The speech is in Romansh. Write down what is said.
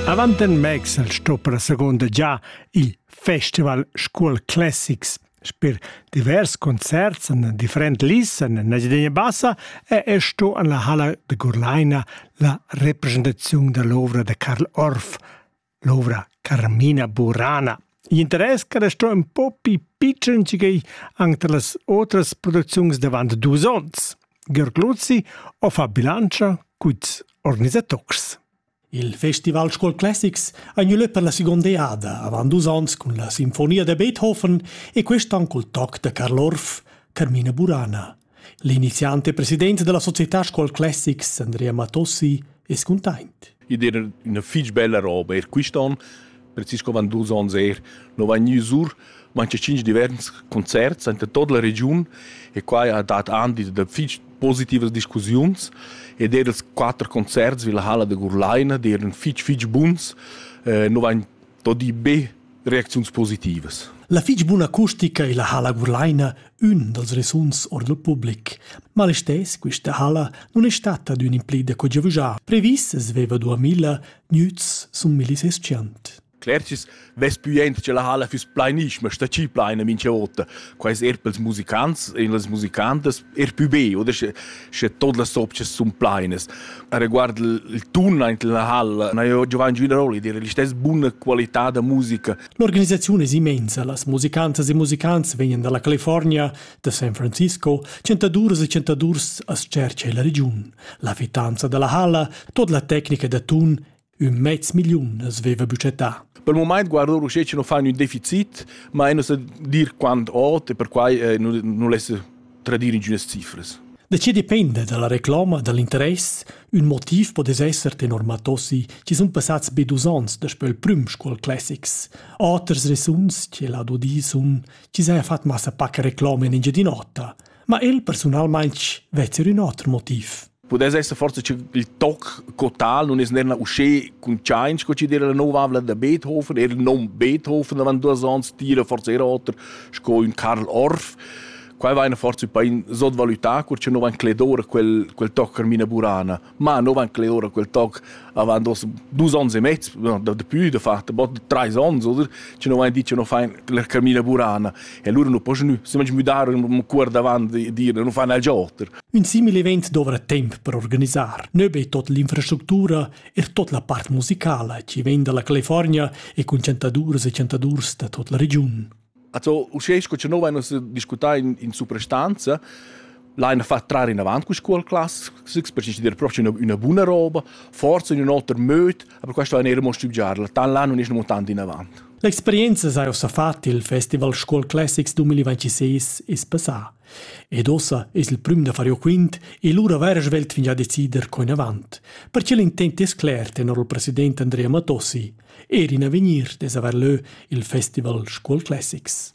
Avant en Max el sto per seconda già il Festival Scuol Classics. Per divers concerts en different lis en Nagideña Bassa è e sto en la halla de Gurlaina la representaziun dell'ovra de Karl Orff. l'ovra Carmina Burana. L'interess che restò un po più pitschen che anche las altre produzioni davant dus onns. Georg Luzzi ho fa bilancia cuts organisatocs. Il Festival School Classics ha gnü lö per la seconda eada avant dus ons cun la Sinfonia de Beethoven e quest an cul toc da Karl Orff, Carmina Burana. L'iniziant e president dalla società Scuol Classics, Andrea Matossi, è scontaint. Id era üna fich bella roba, er quist'on, precis co van dus ons er, no vain gnü sur manche cinc divers concerts in tot la regiun e qua ha dat andi da fich positivas discussiuns ed er els quatter concerts vi la halla da Gurlaina, die eran fich fich buns, eh, no vain Todi be reacziuns positivas. La fich buna acustica illa halla Gurlaina ün dals resuns ord il public. Ma listess quista halla non è stata d'ün implida co giavügià. Previs es veva 2000 nüts sun millisesciant. Clercis vess puient che la halla füss pleinisch, ma sta chi pleina mincha vota. Quais er pels musicants, in las musicantas er pü be, oder sche tot las sopchas sun plainas. Riguard il tun aint la halla na io Giovanni Giudaroli dire l'istess buna qualità da musica. L'organisazione è immensa, las musicantas e musicants vegnan dalla California, da San Francisco, centaduras e centadurs a Cercia e la regiun. La fitanza dalla halla, tot la tecnica da tun Ün mez milliun as veva büccettà. Per il moment guardo ruschè che non fa un deficit, ma non sa dir quant ot e per quai eh, non lesse tradire ingiunas cifres. Da che depende dalla reclama, dall'interess, ün motiv po esser tenor Matossi ci sun passats be dus ans daspö il prüm Scuol Classics. Oters resuns, che l'ha dudi sun, ci saja fat massa pacca reclama in Engiadin'Ota, ma el personalmaintg vezzer ün oter motiv. Pudess esser forse che il toc cotal non es nerna usché consciaint sco chi dera la nova avla da Beethoven, er non Beethoven avant duas ans tira forse era oter sco ün Karl Orff. Quai vaina forse pa in sotvalutà, cur che no van cledora quel, quel toc Carmina Burana. Ma no van cler ora quel toc avant dos dus ons e mezz, no, da dapü da fat, bod trais ons oder, che no vain dit che no fain la camina burana e lura nu po gnü, semage müdar ün cuort avant di dir nu fan il gioter. Ün simil event dovra temp per organisar, nö be tot l'infrastructura, er tot la part musicala chi vegn dalla California e cun chantaduras e chantadurs da tot la regiun. Also, uschè sco cha no vain nus discutà in, in suprastanza, l'haina fat trar inavant cu scuol class, perché ci dir proprio üna, üna buna roba, forza in ün oter möd, aber questo hain eir mo stübgiarla, tan là nun es non tant inavant. L'experienza s'ha ussa fat il Festival Scuol Classics 2026 es passà. Ed ossa es il prüm da far jo quint e lura vair svelt fingià decider co inavant. Perche l'intent es cler, tenor il president Andrea Matossi – Ed in avegnir dess haver leu il festival Scuol Classics.